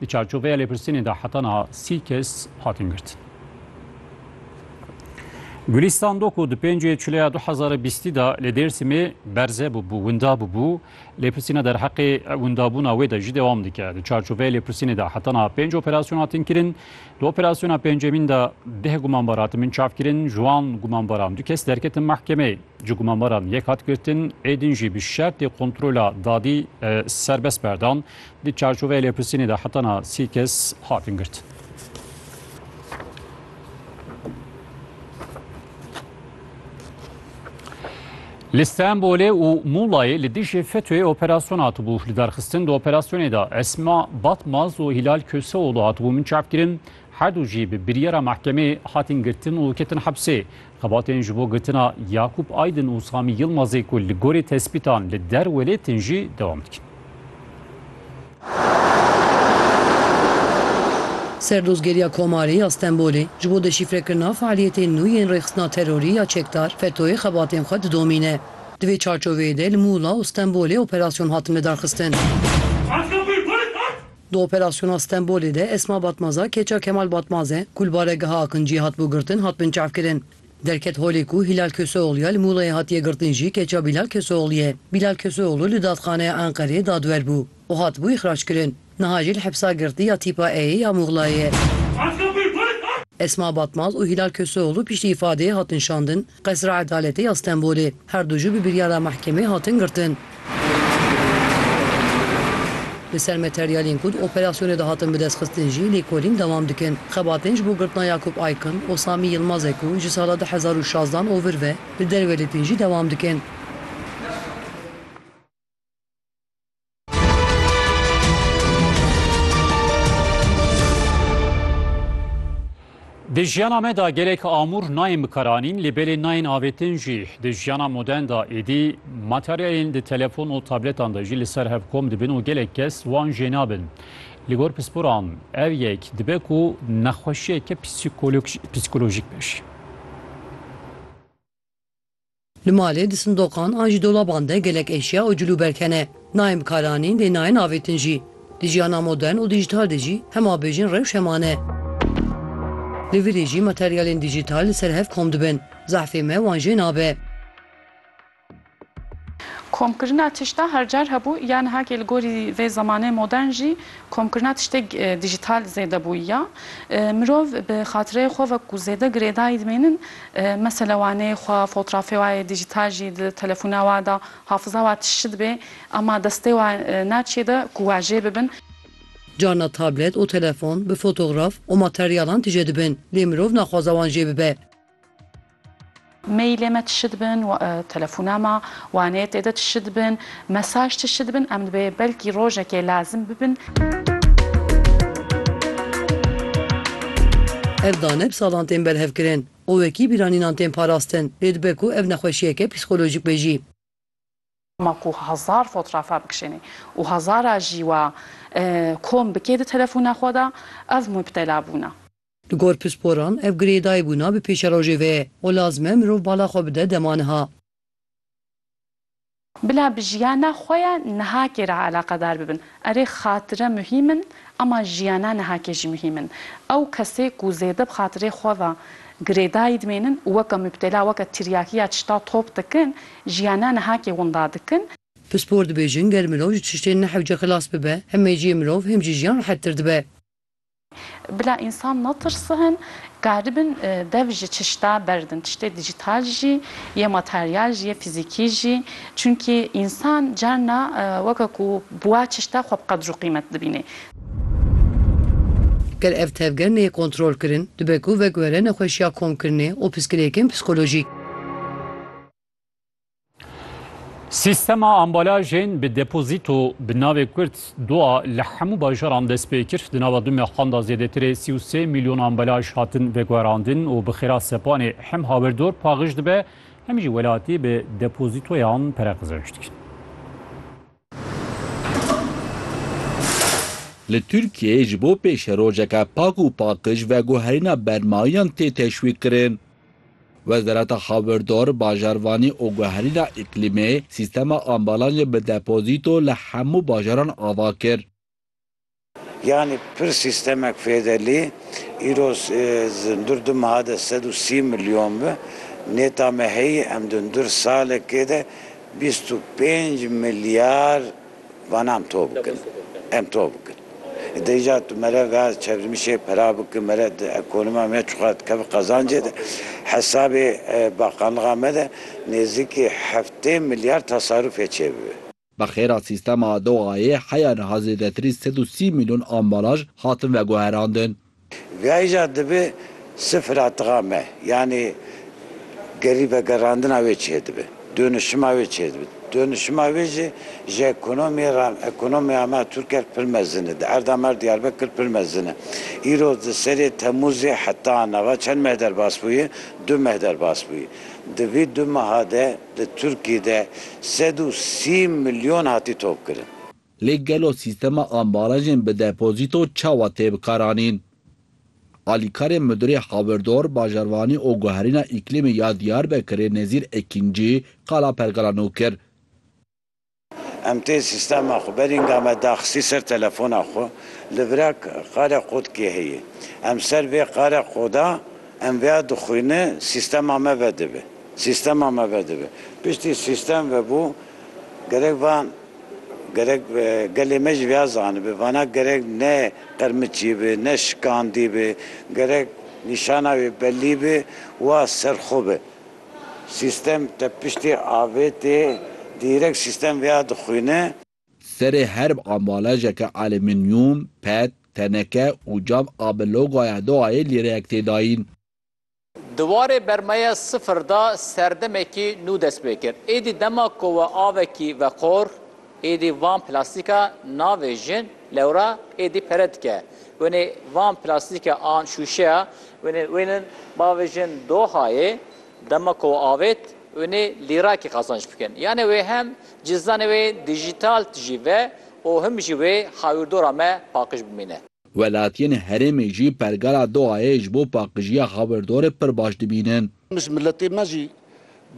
Di çarçoveya lêpirsînê de heta niha sî kes hatin girtin. Gulîstan Doko di pêncê çileya du hezar û bîstî de li Dêrsimê berze bûbû, winda bûbû. Lêpirsîna derheqê windabûna wê de jî dewam dike. Di çarçoveya lêpirsînê de heta niha pênc operasyon hatin kirin. Di operasyona pêncemîn de deh gumanbar hatimin çavkirin. Ji wan gumanbaran du kes derketin mehkemeyê. Ji gumanbaran yek hat girtin, êdin jî bi şertê kontrola dadî serbest berdan. Di çarçoveya lêpirsînê de hetana sî kes hatin girtin. Li Stenbolê û Mulayê li dijî FETÖ'yê operasyon hatibû. Li derxistin di operasyonê de Esma Batmaz û Hilal Köseoğlu hatibû min çavkirin. Her du jî bi biryara mehkemê hatin girtin û ketin hepsê. Xebatên ji bo girtina Yakûp Aydin û Samî Yilmazê ku li gorî tespîtan li der welêtin jî dewam dikin. Serdozgeriya Komarê ya Stenbolê ji bo deşîfrekirina fealiyetên nû yên rêxistina terorî ya çekdar FETO'yê xebatên xwe didomîne. Di vê çarçoveyê de li Mûla û Stenbolê operasyon hatin lidarxistin. Di operasyona Stenbolê de Esma Batmaza keça Kemal Batmaze ku li baregeha Akinciyê hatibû girtin hat binçavkirin. Derket holê ku Hîlal Köseoglûya li Mûlayê hatiye girtin jî keça Bîlal Köseoglûyê. Bîlal Köseoglû li Dadxaneya Enqereyê dadwer bû û hatibû îxrackirin. Niha jî li hepsa girtî ya Tîpa E'yê ya Mûglayê ye. Esma Batmaz û Hîlal Köseoglû piştî îfadeyê hatin şandin. Qesra Edaletê ya Stenbolê, her du jî bi biryara mehkemê hatin girtin. Li ser materyalên ku di operasyonê de hatin bidestxistin jî lêkolîn dewam dikin. Xebatên ji bo girtina Yakup Aykin û Samî Yilmazê ku ji sala du hezar û şazdeh an ovir ve li derwelêtin jî dewam dikin. Di jiyana me de gelek amûr nayên bikaranîn lê belê nayên avêtin jî. Di jiyana modern de êdî materyalên di telefon û tabletan de jî li ser hev kom dibin û gelek kes wan jê nabin. Li gor pisporan ev yek dibe ku nexweşiyeke psîkolojîk be jî. Li malê, di sindoqan an jî dolaban de gelek eşya û cilûberg hene. Nayên bikaranîn lê nayên avêtin jî. Di jiyana modern û dîjîtal de jî hema bêjin rewş heman e. Li virê jî materyalên dîjîtal li ser hev kom dibin. Zehfê me wan jê nabe. Komkirina tişta her car hebû ya nihakê li gorî vê zemanê modern jî komkirina tiştêk dîjîtal zêde bûyiya. Mirov bi xatireyê xwe wek ku zêde girêdayî dimênin Mesela wanê xwe fotrafê wa yê dîjîtal jî di telefûna wa de hafiza wa tişt dibê ema destê wa na çê de ku wajê bibin. Carna tablet û telefon bi fotograf û materyalan tije dibin lê mirov naxwaza wan jê bibe. Mailê me tişt dibin, telefûna me, wanê tê de tişt dibin. Mesaj tişt dibin em dibê belkî rojekê lazim bibin. Ev daneb salan tên berhevkirin û wekî bîranînan tên parastin lê dibe ku ev nexweşiyeke psîkolojîk be jî. Ma ku hezar fotrafa bikişênê û hezara jî wa kom bikê di telefona xwe de ev mubtela bûna. Li gor pisporan ev girêdayîbûna bi pêşerojê ve ye û lazim e mirov bala xwe bide dema niha. Bila bi jiyana xwe ya nihakê re eleqedar bibin. Erê xatire muhîm in ema jiyana nihakê jî muhîm in. Ew kesê ku zêde bi xatirê xwe ve girêdayî dimênin û weke mubtela, weke tiryakî ya tişta top dikin, jiyana nihakê winda dikin. Pispor dibêjin ger mirov ji tiştên nehewce xilas bibe, hem meciyê mirov hem jî jiyan rehettir dibe. Bila însan netirsin, karibin dev ji çişta berdin, tiştê dîjîtal jî yê, materyal jî yê, fîzîkî jî. Çimkî însan carna weke ku bi wa çişta xwe bi qedr û qîmet dibînê. Ger ev tevger neyê kontrolkirin, dibe ku vek were nexweşiya komkirinê û piskirêkên psîkolojîk. Sîstema ambalajên bi depozîto bi navê Kurd dua li hemû bajaran dest pê kir. Di nava du mehan de zêdetirê sî û sê milyon ambalaj hatin veguherandin û bi xêra sepanê hem hawirdor paxij dibe hem jî welatî bi depozîtoyan pere qizanc dikin. Li Tirkiyeyê ji bo pêşerojeke pak û paqij veguherîna bermayiyan tê teşwîqkirin. Wezareta Hawirdar, Bajarvanî û Guherîna Îklîmê sîstema ambalajê bi depozîto li hemû bajaran ava kir. Yanî pir sîstemek fêde lî îro zundur du meha de sed û sî milyon bi. Nêta me heyî em zundur salekê de bîst û pênc milyar Vana em to bikin, em to bikin. Dê îcar tu mere ve çevrimişê pera biki, mere di ekonoma me çiqas dikeve qezancê de. Hesabê bakanlixa me de nêzîkî heftê milyar tasarufê çêbibe. Bi xêra sîstema Dohayê heya niha zêdetirî sed û sî mîlyon ambalaj hatin veguherandin. Veyja dibe sifra tixa me, yanî gerî vegerandina wê çêdibe, dönüşima wê çêdibe. Dönüşima wê jî ji ekonomiyê re, ekonomiya me Tirker pir mezin e, di erda me Diyarbekir pir mezin e. Îro di serê Temûzê heta nava çend meh derbas bûye? Du meh derbas bûye. Di vî du meha de di Tirkiyê de sed û sî milyon hatî topkirin. Lê gelo sîstema ambalajên bi depozîto çawa tê bikaranîn? Alîkarê Midurê Hawirdor, Bajarvanî û Guherîna Îklîmî ya Diyarbekirê Nezîr Ekîncî qala pergala nû kir. Em tê sîstema xwe berînga me daxisî ser telefona xwe li virek qare qod kê heye. Em ser vê qare qoda em vêya dixwîne sîstema me vedibe. Sîstema me vedibe. Piştî sîstem vebû Gerek van gerek gelê me jî vêya zanibe. Vana gerek ne qirmiçî be, ne şikandî be, gerek nîşana wê belî be wa serxwe be. Sîstem tepiştê avêtê dîrek sîstem vêya dixwîne. Serê her ambalajeke aliminyum, pet, teneke û cam a bi logaya DOHA'yê lîreyek tê dayîn. Di warê bermaya sifir de serdemekî nû dest pê kir. Êdî dema ku we avekî veqor, êdî van plastîka navê jin, lewra êdî pere dike. Wenê van plastîka an şûşeya wenê wênin bavê jin dohayê dema ku we avêt wenê lîrakî qazanc bikin. Yanê wê hem cizdanê wê dijîtal tijî ve û him jî wê hawîrdora me paqij bimîne. Welatiyên herêmê jî pergala Dohayê ji bo paqijiya hawirdorê pir baş dibînin. Ji miletê me jî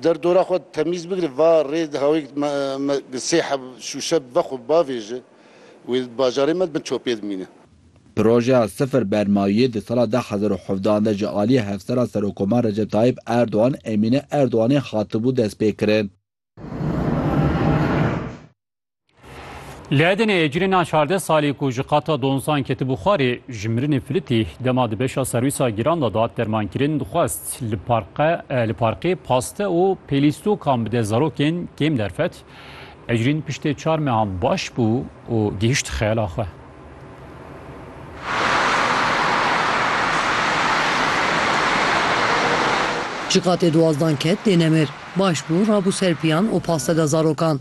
der dora xwe temîz bigire va rê hawêk me bi sê heb şûşe bi ve xwe bavêje wê di bajarê me di bin çopê dimîne. Projeya Sifir Bermayiyê di sala du hezar û hevdeh de ji aliyê Hevsera Serokomar Recep Tayîp Erdogan Emîne Erdoganê hatibû destpêkirin. Li Edenê êcirêna çardeh salî ku ji qata donzan ketibû xwarê ji mirinê filitî dema di beşa serwîsa giran de dat dermankirin dixwest li parqe li parkê paste û pêlîstokan bide zarokên kêm derfet. Ecrîn piştê çar mehan baş bû û gihişt xeyala xwe. Ji qatê duwazdan ket dê nemir. Baş bû rabû ser piyan û paste de zarokan.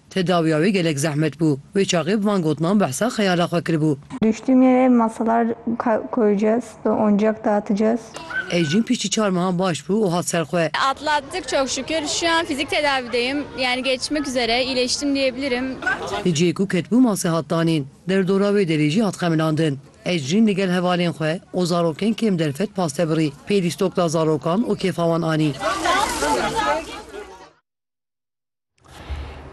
Tedawiya wê gelek zehmet bû. Wê çaxê bi van gotinan behsa xeyala xwe kiribû. Düştüm yere masalar koyacağız ve oyuncak dağıtacağız. Ecrin piştî çar mehan baş bû û hat ser xwe. Atlattık çok şükür. Şu an fizik tedavideyim. Yani geçmek üzere. İyileştim diyebilirim. Li cihê ku ketibû masê hat danîn. Derdora wê derê jî hat xemilandin. Ecrin li gel hevalên xwe û zarokên kêm derfet paste birî. Pêlî stok da zarokan û kêfa wan anî.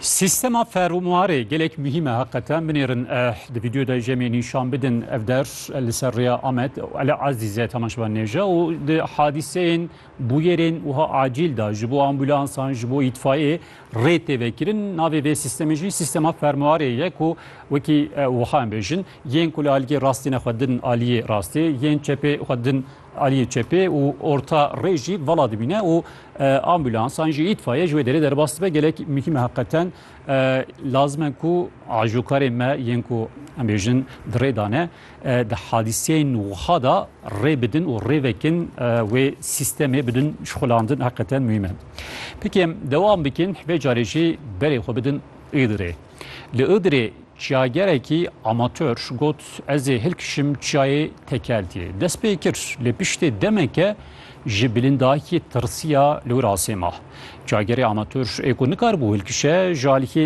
Sîstema ferûmarê gelek muhîm e heqete. Binêrin di vîdyoya de jemê nîşan bidin ev der li ser rêya Amed Elî Ezîze temaşevan nêje û di hadîseyên bûyerên wiha acîl de ji bo ambûlansan ji bo îtfayê rê tê vekirin. Navê vê sîstemê jî sîstema ferûmarê ye ku wekî wiha em bêjin yên ku li aliyê rastî ne xwe din aliyê rastê yên çepê xwe din Aliyê çepê û orta rê jî vala dibîne û ambûlansan jî îtfayê ji wê derê derbas dibe gelek mihîme heqeten lazime ku ajokarê me yên ku em bêjin di rê dane di hadîseyên wiha da rê bidin û rê vekin wê sîstemê bidin şixulandin heqeten mihîme. Pekê em dewam bikin hevê carê jî berê xwe bidin êdirê. Li Iğdırê çiyagerekî amatör got ez ê hilkişim çiyayê Tekeltiyê. Dest pê kir lê piştê demeke ji bilindayîkê tirsiya li wir asê ma. Çiyagerê amatör ê ku nikaribû hilkişe ji alîkê